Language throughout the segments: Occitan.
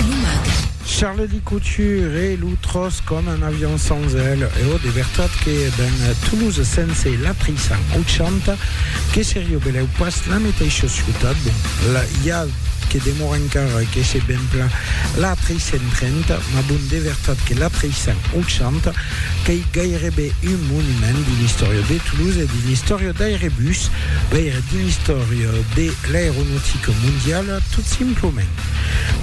Lo mag. Charledy Couture e lo tròç com un avion sans aile e ò de vertat que ben Toulouse sense la 380 que seria belèu pas la meteisha ciutat bon la i a que demora encara que se ben pla la 330 ma bon de vertat que la 380 qu'ei gairebe un monument dins l'istòria de Toulouse e dins l'istòria d'Airebus veire dins l'istòria de l'aeronautica mondiala tot simplement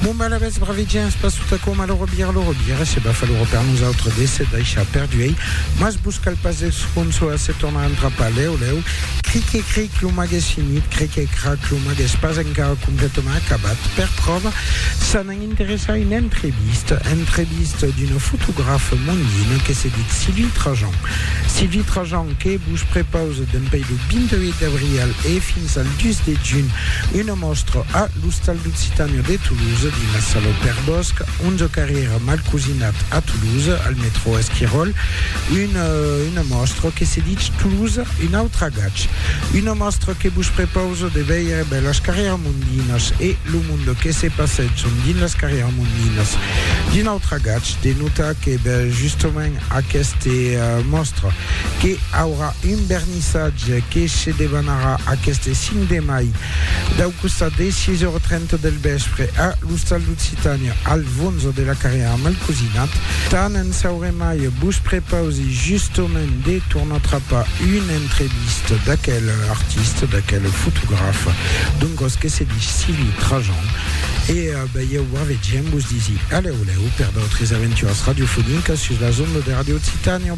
Bon, ben, alavetz, bravi gents, pas tot aquò, mal robir, lo robir, se bafa lo per nosautres de se daishar perduei, mas vos cal pas esconsolar se tornar entrapar lèu lèu, cric e cric, lo mag es finit, cric e crac, lo mag es pas encara completament acabat, per pròva, s'an a interessar a una entrevista, entrevista d'una fotografa mondina que se dit Sylvie Trajan. Sylvie Trajan que vos prepausa dempei lo 28 d'abrial e fins al 2 de junh una Mòstra a l'Ostal d'Occitània de Toulouse, dins la sala Au Père Bosc, 11 carrièra Malcosinat a Toulouse, al metrò Esquiròl, una mòstra que se ditz Toulouse, un autre agatge. Una mòstra que vos prepausa de veire bèl las carrièra Mondinas e lo monde que se passètson dins las carrièra Mondinas. D'un autre agatge, de notar que bèl justament aqueste mòstra que aurà Un vernissatge que se debanarà aqueste 5 de mai dau costat des 6,30 del vèspre a l'Ostal d'Occitània al Vonzo de la Carrièra amb el cosinat. Tant en sauremai, vos prepausi justament de tornar trapar una entrevista d'aquel artista, d'aquel fotograf, d'un gòs que se dich Cili Trajan. E balhèu barvegem, vos disi alèu lèu per d'autres aventuras radiofonicas sus las ondas de Radio Occitània.